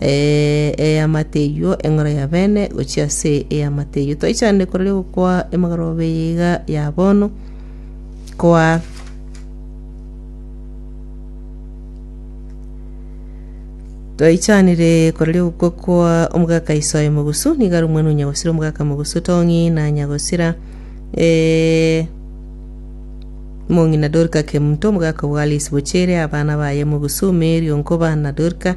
eamate eyio eng'ora ya bene gochia ase eamate eyio. Twaichanire korere gokwa emegorobe eye iga ya bono, koa twaichanire korere gokwa koa omogaka iso aye mogusu, nigo are omwana o nyagosira omogaka mogusu Tong'i na nyagosira eh, mong'ina Dorika Kemto, omogaka o Alice Bochere, abana baye mogusu Mary o Nkoba na Dorika,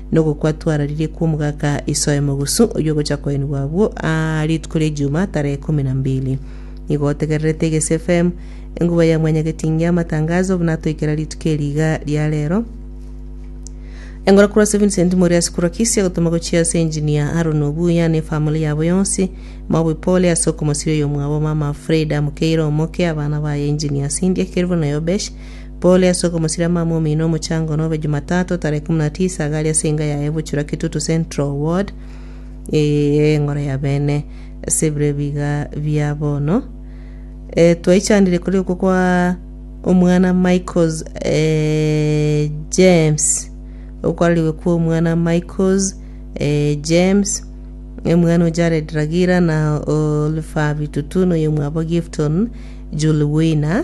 Nogokwa twararirie kw'omogaka isoe mogusu, oyio ogocha koenigwa abwo aa rituko ria Ijumaa tarehe kumi na mbili. Nigo otegererete Egesie FM, enguba ya Mwanyagetinge amatangazo buna atoikera rituko eri iga ria rero. Engora korwa ase Vincent Moriasi korwa Kisii agotoma gochia ase Engineer Aaron Obuya ne family yabo yonsi. Maobi pole ase okomosiria oyomwabo mama Frieda Mukeire omoke, abana baye Engineer Cynthia Kelvin na Yobesh. Pole ase okomosirama amo omino omochango nobe Jumatatu tarehe kumi na tisa iga aria ase enga yaye Buchura Kitutu Central Ward eye eng'ora ya bene ase ebiro ebi iga bia bono. Eh, twaichandire kore okwo kwa omwana Michaels eh, James okwarerigwe kwa omwana Michaels eh, James omwana o Jared Ragira na Oliver Bitutu noyo omwabo Gifton Julwina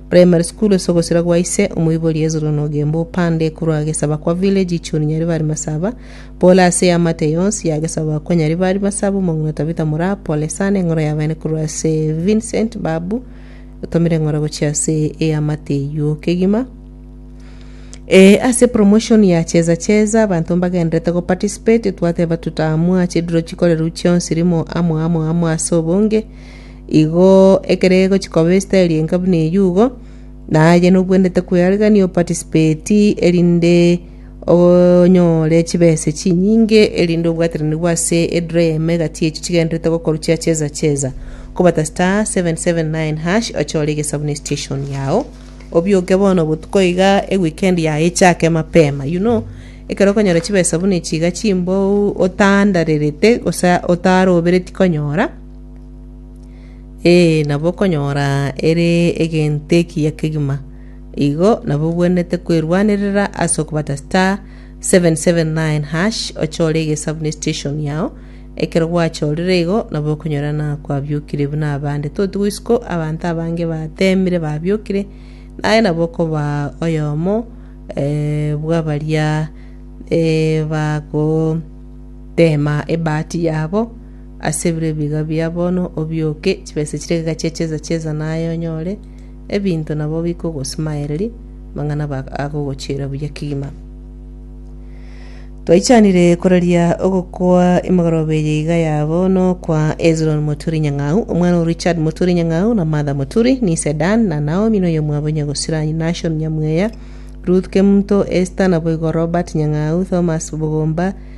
Primary school ase ogosira gwa ise omoibori Hezron Ogembo opande ekorwa agesaba kwa village ichuni Nyaribari Masaba pole ase eamate yonsi yagesaba kwa Nyaribari Masaba omong'ina Tabitha Moraa pole sana eng'ora yabaene korwa ase Vincent Babu otomire eng'ora gochia ase eamate eyio kegima Eh, ase promotion ya cheza cheza abanto mbagenderete go participate twateba tutaamua chidiro chikorerwa chionsi rimo amo amo amo ase obonge Igo ekero egochia koba esitari enka buna eyio igo, na aye nobwenerete kwearekania o participate erinde onyore chibesa chinyinge erinde obwatiranire bwa ase edraw eyemo egati echio chigendererete gokorwa chia cheza cheza. Kobata *779# ochore egesabu ne station yao, obioke bono botuko iga eweekend yao echake mapema. You know, ekero okonyora chibesa buna echi iga chimbao otandarerete gose otarobereti konyora, Ee, nabo okonyora ere egento ekiya kegima. Igo nabo obwenerete kwerwanerera ase okobata *779# ochore egesabu ne station yao. Ekero gwachorire igo nabo okonyora na kwabiokire buna abande. Toti goisiko abanto abange batemire babiokire naye nabo okoba oyomo eh, bw'abaria eh, bagotema ebahati yabo. Ase bire ebiga bia bono obioke chibesa chire egeka chia cheza cheza naye onyore ebinto nabo bikogosumaereria mang'ana ba agogochiera buya kegima. Twaichanire koraria ogokwa emegoroba eye iga ya bono kwa Hezron Moturi Nyang'au, omwana o Richard Moturi Nyang'au na Martha Moturi, Nise Dan na Naomi noyo mwabo Nyagosira, Nashon Nyamweya, Ruth Kemto, Esther naboigo Robert Nyang'au, Thomas Bogomba,